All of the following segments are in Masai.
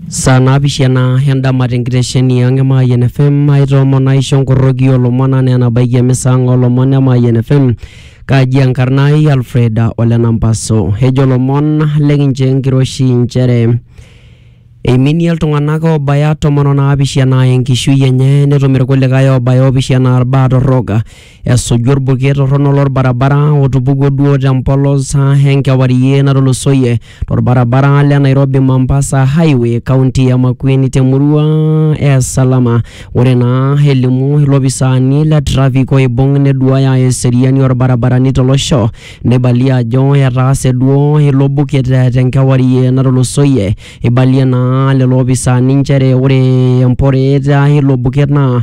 Saa naapishana endama te nkitesheni ang' e Mayian FM aitoomono aisho nkoroki o lomon enaa enabaiki emisa ang' o lomon e Mayian FM. Kaji enkarna ai Alfred ole Nampaso. Ejo lomon le kincho enkiroshi inchere eiminie iltung'anak oobaya tomon o naapishana enkishui enye netum irkulikai oobaya oopishana irbaa torrok. esuju orbuket torrono lorbarabara otupukuo duo tempolos ah, enkewarie natulusoyie torbarabara le Nairobi Mombasa Highway kaunti ya Makueni temurua e Salama. Ore naa elimu ilopisaani le traffic oibung neduaya eseriani orbarabarani tolosho neibalie ajo etaase duo ilo buket eh, tenkewarie natulusoyie. Eibalie naa lelo opisaani nchere ore emporeet ah, ilo buket naa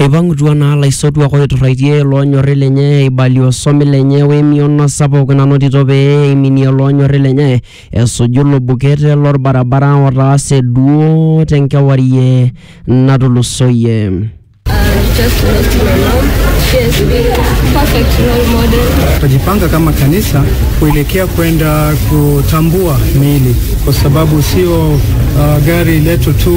Eipang'utua naa laisotuak oiturraitie loonyorri lenye eibalie osomi lenye wemion sapuk nanotito pee eiminie loonyorri lenye esuju ilo buket lolbarabara otaase duo tenkewarie natulusoyie. Tutajipanga kama kanisa kuelekea kwenda kutambua miili, kwa sababu sio uh, gari letu tu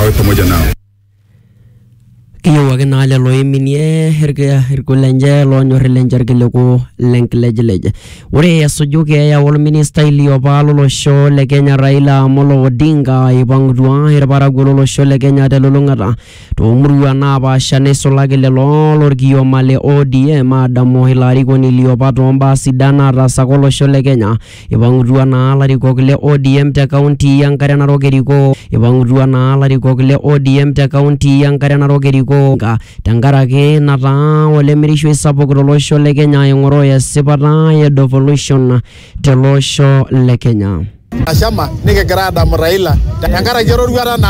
awe pamoja nao. kiyieu ake naa lelo oiminie irki- irkul lenche loonyor lenche irkiliku lenkilejilej ore esuju keeya olministai liopa lolosho le kenya raila amolo odinga eipang'utua irparakuo lolosho le kenya telulung'ata toomurua naapaasha neisulaki lelo lorkioma le odm aadamu ilo arikoni liopa toombaa sidan naataasaka olosho le kenya Eipang'utua naa larikok le ODM te kaunti e Nkare Narok erikoo Eipang'utua naa larikok le ODM te kaunti e Nkare Narok erikoo nka tenkaraki nataa olemirishoi sapuk to losho le Kenya aing'oroo esipata e devolution te losho le Kenya. Nashama nikigira aadamu Raila tenkaraki eroruata naawa.